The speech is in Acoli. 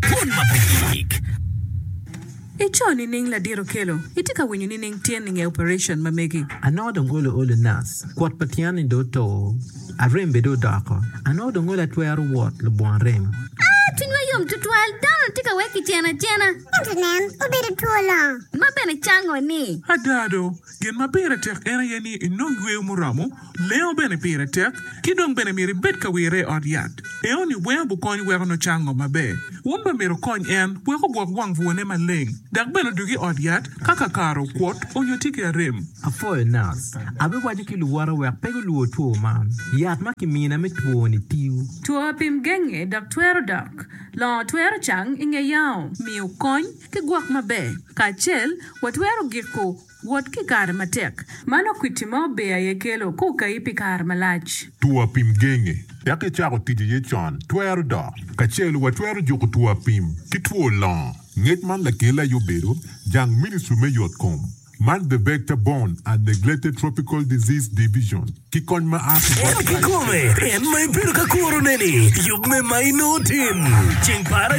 Dwol ma pe yik. I co nining ladit okelo? Itye ka winyo nining tyen ninge operation ma megi? Anongo dong olo olo nas. Kwot pa tyen ni dong oto. Arem bene dong odoko. Anongo dong olo atwero wot lubwon rem. Aa, cwinywa yom tutwal. Dano tye ka wek kiceno acena. Ento nen, obedo two longo. Ma bene cango ni. Ada do, Gin ma pire tek en aye ni inong yweyo muromo, lengo bene pire tek, ki dong bene myero ibed ka wirre i ot yat. Enoni weng gukonyi weko nongo cango maber. Wun bene myero wukony en wek ogwok wang bwone maleng dok bene odog i ot yat ka kakare okwot onyo tye ki arem. Apwoyo nac. Abiwaco ki luwota wek pe gulwor two man. Yat ma kimina me twoni tiyo. Two apim genge dok twero dok. Longo twero cang i nge yao. Miyo kony. Ki gwok maber kacel, watwero giko wot ki kare matek. Mano kwiti ma ober aye kelo ka okayi pi kare malac. Two apim genge tek icako tic iye con twero dok. Kacel watwero juko two apim ki two longo. Ngec man lakelli aye obedo jang Ministry me Yot Kom man The Vector Borne and Neglected Tropical Disease Division ki kony ma a ki bot Christ Church.